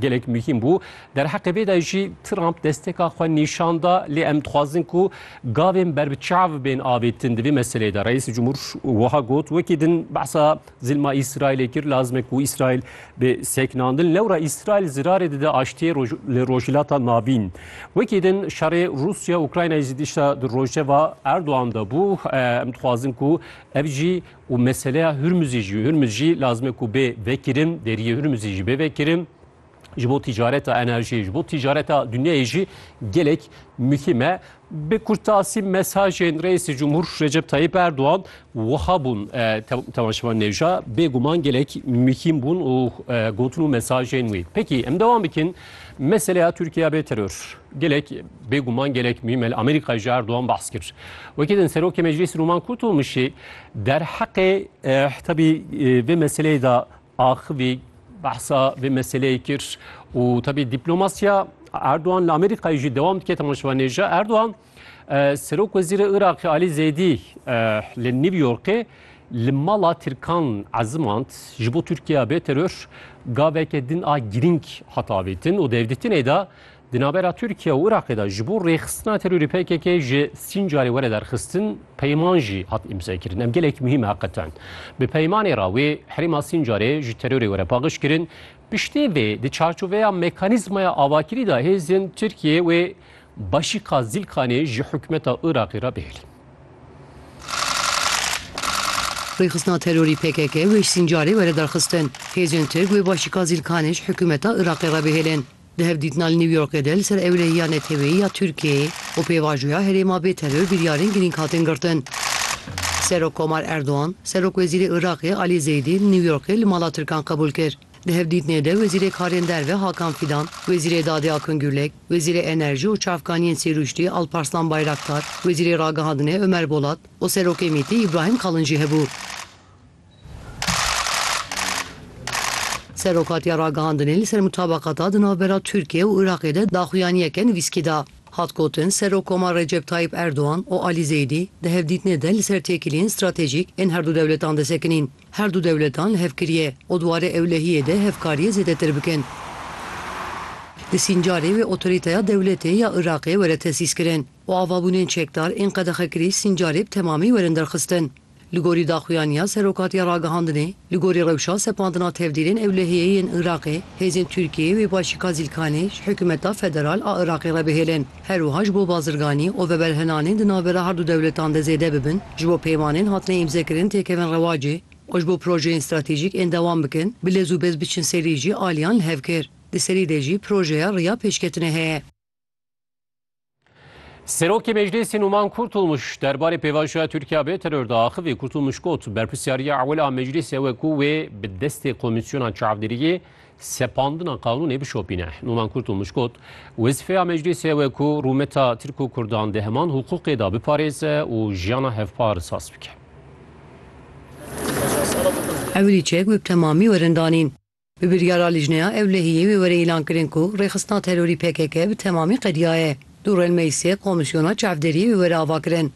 Gelek muhîm bû. Derheqê vê de jî Trump desteka xwe nîşan da, lê em dixwazin ku gavên ber bi çav bên avêtin di vê meseleyê de. Reîsê Cumhur wiha got, Wekî din behsa zilma Îsraîlê kir, lazim e ku Îsraîl bê sekinandin. Lewra Îsraîl zirarê dide aştiyê li Rojhilata Navîn. Wekî din şerê Rûsya-Ukraynayê jî dişta di rojeva Erdogan de bû. Em dixwazin ku ev jî Û meseleya Hurmuzî jî, Hurmuz jî lazim e ku bê vekirin, deriyê Hurmuzî jî bê vekirin. Ji bo tîcareta enerjiyê, ji bo tîcareta dinyayê jî gelek muhîm e. Bi kurtasî mesajên Reîsê Cumhur Recep Tayyip Erdogan wiha bûn Tevan Şivan Nêvja. Bêguman gelek muhîm bûn û gotin û mesajên wî. Peki em dewam bikin. Meseleya Tirkiye bê teror. Gelek bêguman gelek mîm el Amerîkayê ji Erdogan behs kir. Wekî din Serokê Meclîsî Rûman Kurtulmuşî derheqê tabî vê meseleyê de axivî behsa vê meseleyê kir û tabî dîplomasiya Erdogan li Amerîkayê jî dewam dike temaşevanê ji Erdogan. Serok Wezîrê Iraqê Alî Zeydî li New Yorkê li mala Tirkan ezimand ji bo Tirkiya bê teror gaveke din a girîng hat avêtin û di hevdîtinê de di navbera Tirkiya û Iraqê de ji bo rêxistina terorê PKK ji Sîncarê were derxistin peyman jî hat îmzekirin. Em gelek muhîm e heqeten. Bi peymanê re wê herêma Sîncarê ji terorê were paqiş kirin. Piştî vê di çarçoveya mekanîzmaya avakirî de hêzên Tirkiyeyê wê Başîka Zîlkanê ji hikûmeta Iraqê re bihêlin. Rêxistina terorî pkk weş sîncarê were derxistin. Hêzên Tirk wê başîka Zîlkanê ji hikûmeta Iraqê re bihêlin. Di hevdîtina li New Yorkê de li ser ewlehiya neteweyî ya Tirkiyeyê û pêvajoya herêma bê teror biryarên girîng hatin girtin. Serokkomar Erdogan, Serokwezîrê Iraqê Alî Zeydî li New Yorkê li mala Tirkan qebûl kir. Di hevdîtinê de Wezîrê Karên Derve Hakan Fîdan, Wezîrê Dadê Akın Gürlek, Wezîrê Enerjî û Çavkaniyên Sêrûştî Alparslan Bayraktar, Wezîrê Ragihandinê Ömer Bolat û Serokê MîT'ê Îbrahîm Kalın jî hebû. Serokatiya Ragihandinê li ser mutabaqata di navbera Tirkiye û Iraqê de daxuyaniyeke nivîskî da. Hat gotin, Serokkomar Recep Tayyîp Erdogan û Alî Zeydî di hevdîtinê de li ser têkiliyên stratejîk ên herdu dewletan de sekinîn. Her du dewletan hevkiriye û di warê ewlehiyê de hevkariyê zêdetir bikin. Di Sîncarê wê otorîteya dewletê ya Iraqê were tesîskirin û avabûnên çekdar ên qedexekirî Sîncarê bi temamî werin derxistin. Li gorî daxuyaniya Serokatiya Ragihandinê, li gorî rewşa sepandina tevdîrên ewlehiyê yên Iraqê, hêzên Tirkiyeyê wê başîka Zîlkanê ji hikûmeta federal a Iraqê re bihêlin. Her wiha ji bo bazirganî û veberhinanên di navbera her du dewletan de zêde bibin, ji bo peymanên hatine îmzekirin têkevin rewacê û ji bo projeyên stratejîk ên dewam bikin bi lez û bez biçin serî jî aliyan li hev kir. Di serî de jî projeya riya pêşketinê heye. Serokê Meclîsê Nûman Kurtulmuş derbarê pêvajoya Tirkiya bê teror de axivî. Kurtulmuş got, Berpirsyariya ewil a Meclîsê ew e ku wê bi destê komîsyona çavdêriyê Sepandina qanûnê bişopîne. Numan Kurtulmuş got, Wezîfeya meclîsê ew e ku rûmeta Tirk û Kurdan di heman hiqûqê de biparêze û jiyana hevpar saz bike. Ewilî çek wê bi temamî werin danîn. Bi biryara Lijneya Ewlehiyê wê were îlan kirin ku rêxistina terorî pkk bi temamî qediyaye. Dû rêl meclîsê komîsyona çavderiyê wê were avakirin.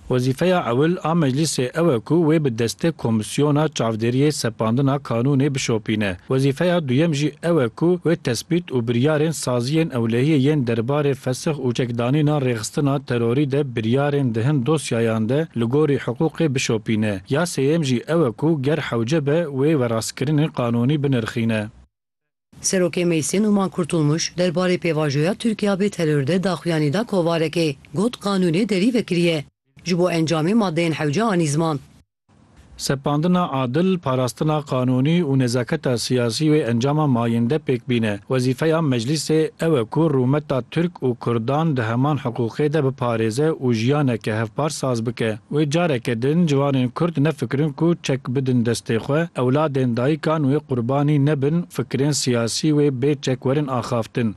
Wezîfeya ewil a Meclîsê ew e ku wê bi destê Komîsyona Çavdêriyê Sepandina Kanûnê bişopîne. Wezîfeya duyem jî ew e ku wê tespît û biryarên saziyên ewlehiyê yên derbarê fesix û çekdanîna rêxistina terorî de biryarên di hin dosyayan de li gorî hiqûqê bişopîne. Ya sêyem jî ew e ku ger hewce be wê werastkirinên qanûnî binirxîne. Serokê Meclsê Numan Kurtulmuş derbarê pêvajoya Tirkiya bê teror de daxuyanî da kovarekê, got qanûnê derî vekiriye ji bo encamê madeyên hewce anî ziman. Sepandina adil, parastina qanûnî û nezaketa siyasî wê encama mayinde pêk bîne. Wezîfeya Meclîsê ew e ku rûmeta Tirk û Kurdan di heman hiqûqê de biparêze û jiyaneke hevpar saz bike. Wê careke din ciwanên Kurd nefikirin ku çek bidin destê xwe, ewladên dayikan wê qurbanî nebin fikirên siyasî wê bê çek werin axaftin.